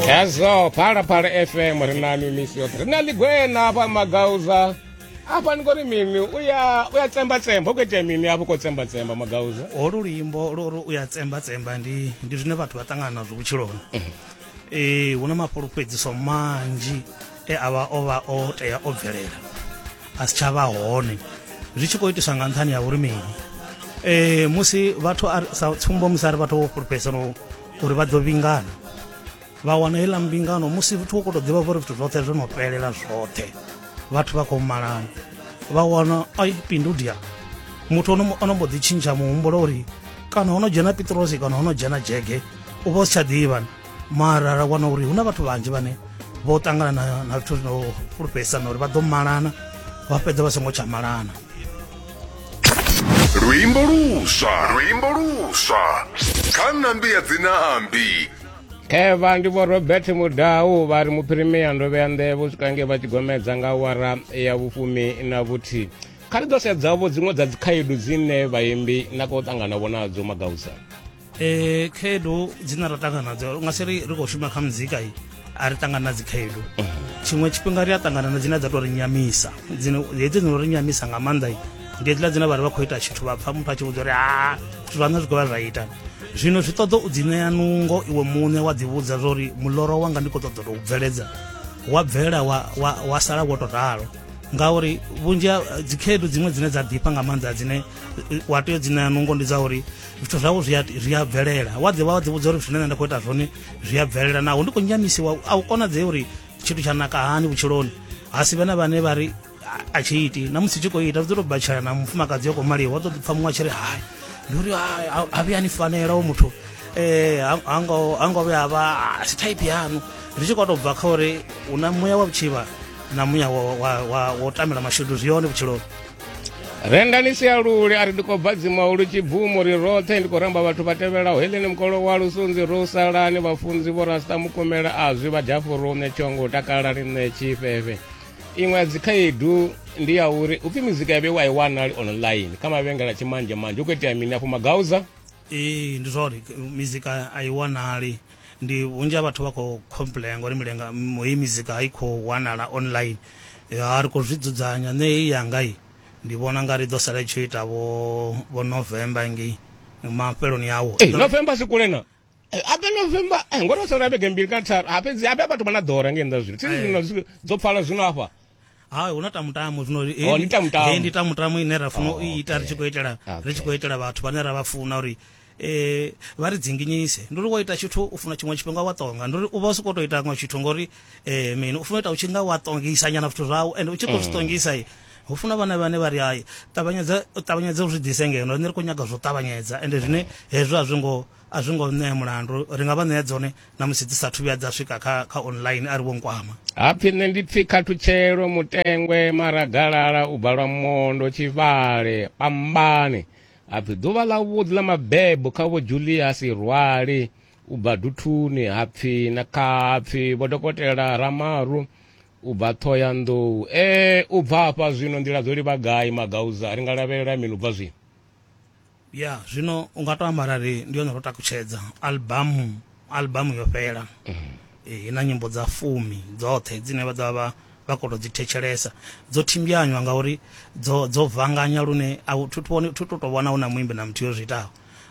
hezwo phalaphala fm ri na mimisi yoṱhe ri na ḽigwena hafha magauza hafha ni kori mini uya uya tsemba tsemba u khou itea mini hafho khou tsemba tsemba magauza holu luimbo lori uya tsemba tsemba ndi ndi zwine vhathu vha ṱangana nazwo vhutshiloni ee hu na mafhulufhedziso manzhi e a vha o vha o tea o bvelela a si tsha vha hone zwi tshi khou itiswa nga nṱhani ya uri mini ee musi vhathu a ri- sa tsumbo musi a ri vhathu vho fhulufhedzisano uri vha ḓo vhingana vha wana heiḽa mbingano musi vhathu vho koto ḓivha vhori zwithu zwoṱhe zwo no fhelela zwoṱhe vhathu vha khou malana vha wana ai pindudia muthu ono mbo ḓi tshintsha muhumbulo uri kana ho no dzhena pitrosi kana ho no dzhena dzhege u vha u si tsha ḓivha mara ra wana uri hu na vhathu vhanzhi vhane vho ṱangana na zwithu zwino fhulufhedzisana uri vha ḓo malana vha fhedza vha songo tsha malana luimbo luswa luimbo luswa kha nambi ya dzinambi kheva ndi vho robert mudau vha ri muphirimia ndo vhea nḓevhe u swika nge vha tshigomedza nga wara ya vhufumi na vhuthihi kha ri ḓo sedzavho dziṅwe dza dzikhaedu dzine vhaimbi na kho ṱangana vho nadzo magausa eh khaedu dzine ra ṱangana nadzo nga si ri ri khou shuma kha muzika i a ri ṱangana na dzikhaedu tshiṅwe tshifhinga ri a ṱangana na dzine dza tou ri nyamisa dzine hedzi dzino ri nyamisa nga maanḓa i ndi hedziḽa dzine vha ri vha khou ita tshithu vha pfa muthu a tshi vhudza uri ha zwithu zwaṋe zwi khou vha zwa ita zwino zwi ṱoḓa u dzi ṋea nungo iwe muṋe wa ḓi vhudza zwa uri muloro wanga ndi khou ṱoḓa tou bveledza wa bvela wa, wa, wa sala wo to ralo ngauri vhunzhi ha dzikhaedu dziṅwe dzine dza ḓifha nga maanḓa dzine wa tea u dzi ṋea nungo ndi dza uri zwithu zwawo zwi a bvelela wa ḓivha wa ḓivhudza uri zwine nṋe nda khou ita zwone zwi a bvelela naho ndi khou nyamisiwa a u konadzei uri tshithu tsha naka hani vhutshiloni ha si vhe na vhane vha ri a tshi iti na musi tshi khou ita zwi ḓo tou batshela na mufumakadzi yo khou maliwa wa ḓo ḓi pfa muṅwe a tshi ri hai ndi uri a vhuya ni fanela o muthu um ha ngo vhuya vha a si type yanu ri tshi khou tou bva kha uri hu na muya wa vhutshivha na muya wo tamela mashudu zwi yone vhutshiloni renda ni sia lule a ri ndi khou bva dzimaho lu tshibvumo ri roṱhe ndi khou ramba vhathu vha tevhelaho heleni mukolo wa lusunzi ro salani vhafunzi vho rasta mukomela a zwi vha dafurune tshongo takala ri nṋe tshifhefhe iṅwe ya dzikhaedu ndi ya uri upfi mizika ya vheiwa i wanali online kha mavhengela tshimanzhemanzhe hu khou itea mini afho magauza ee ndi zwori mizika a i wanali Ndi vhunzhi ha vhathu vha khou complain ngori milenga heyi mizika i khou wanala online ya ri khou zwi dzudzanya nṋe heyi yanga i ndi vhona nga ri ḓo sala i tshi ita vho vho November ngei mafheloni awo hey, eh, November si kule na ape eh, November eh, ngori o sala vhege mbili kana tharu ha fhedzi ape vhathu vha na ḓora ngei nnḓa zwino thi zwino dzo pfala zwino hafha ha hu na tamutamo zwino he- Oh, ndi tamutamo. he ndi tamutamo ine ra funa Oh, u i ita ri tshi khou itela Okay. ri tshi khou itela vhathu vhane ra vha funa uri eh vha ri dzinginyise ndi uri wo ita tshithu u funa tshiṅwe tshifhinga wa tonga ndi uri u vha u si khou tou ita ṅwe tshithu ngori eh mini u funa u ita u tshi nga wa tongisa nyana zwithu zwau ende u tshi khou zwi tongisa i hu funa vhana vhane vha ri hai ṱavhanyedza u ṱavhanyedza u zwi ḓise ngeno rine ri khou nyaga zwo ṱavhanyedza ende zwine hezwo a zwi ngo A zwi ngo ṋea mulandu, ri nga vha ṋea dzone na musi dzi sa thu vhuya dza swika kha, kha online a ri vho nkwama. Hapfi nṋe ndi pfi khathutshelo, mutengwe, maragalala, u bva lwa mondo, tshivhale, pambane. Hapfi ḓuvha ḽa vhuḓi ḽa mabebo kha vho Juliasi Rwali, u bva Duthuni, hapfi na kha hapfi vho dokotela Ramaru, u bva Thohoyandou. Ee, u bva hafha zwino nḓila dzo livha gai, Magauza, ri nga lavhelela mini u bva zwino? ya zwino u nga to amba arali ndi yone ro takutshedza albamu albamu yo fhela Eh, i na nyimbo dza fumi dzoṱhe dzine vha ḓovha vha vha khou tou dzi thetshelesa dzo thimbyanywa ngauri dzo dzo vanganya lune a u- thi thu vhoni- thi tu tou vhona hu na muimbi na muthu yo zwi itaho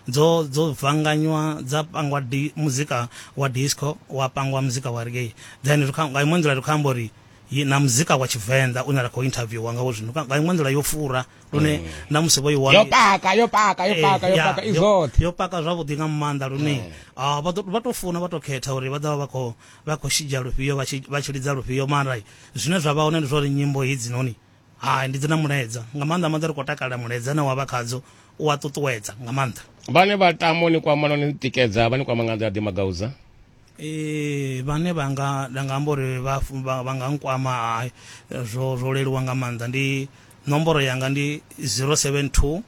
dzo dzo vanganywa dza pangwa di, muzika wa disco wa pangwa muzika wa reggae then ri kha- nga iṅwe nḓila ri khou amba uri yi- na muzika wa tshivenḓa une ra khou interviewa ngawo zwino Nga- nga iṅwe nḓila yo fura lune na musi vho i wana yo paka yo paka yo Eh, paka yo ya, paka i yo- zwoṱhe yo paka zwavhuḓi nga maanḓa lune ah, vha ḓo- vha to funa vha to khetha uri vha ḓovha vha khou vha khou shidzha lufhio vha tshi- vha tshi lidza lufhio mara zwine zwa vha hone ndi zwori nyimbo hedzi noni hai ndi dzi na mulaedza nga maanḓa maanḓa ri khou takalela mulaedza na wa vha khadzo u a ṱuṱuwedza nga maanḓa vhane vha tamo ni kwama no ni tikedza vha ni kwama nga nḓila ḓi magauza ee vhane vha nga nda nga amba uri vha vha nga nkwama hai zwo zwo leluwa nga maanḓa ndi nomboro yanga ndi 072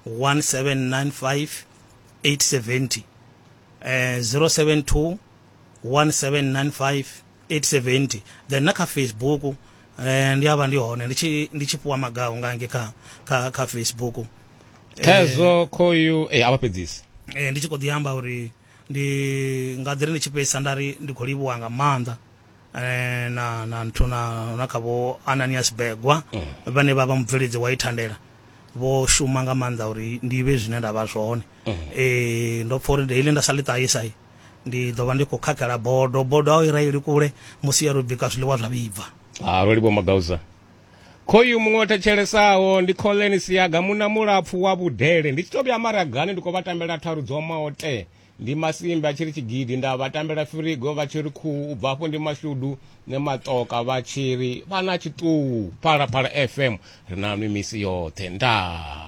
1795 870 eh 072 1795 870 then na kha facebook eh ndi avha ndi hone ndi tshi ndi tshi puwa magaho nga nge kha kha kha facebook kha hezwo khoyu eh a vha fhedzisi eh ndi tshi kho ḓi amba uri Ndi nga ḓi ri ndi tshi fhedzisa nda ri ndi khou livhuwa nga maanḓa eh, na na nthu na na kha vho Ananias Begwa mm. vhane vha vha mubveledzi wa ithandela vho shuma nga maanḓa uri ndi vhe zwine nda vha zwone mm. eh ndo pfa uri daily nda sa ḽi ṱahisa ndi ḓo vha ndi khou khakhela bodo bodo a i raeli kule musi ya ro bika zwiḽiwa zwa vhibva ha ah, ro livhuwa magauza khoyu muṅwe o thetshelesaho ndi collen siaga muna mulapfu wa vhudele ndi tshi to vhuya maragani ndi khou vha tambela tharu dzo omaho te ndi masimbi a tshi ri tshigidi nda vha tambela firigo vha tshi ri khuhu u bva afho ndi mashudu ne matoka vha tshi ri vha na tshiṱuwu phalaphala fm ri na nwi misi yoṱhe ndaa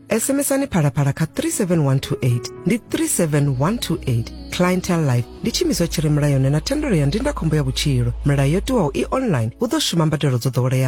SMSani phalaphala kha 37128 ndi 37128 clientele life ndi tshiimiswa tshi re mulayoni na thendelo ya ndindakhombo ya vhutshilo milayo yo tiwaho i online hu ḓo shuma mbadelo dzo ḓoweleaho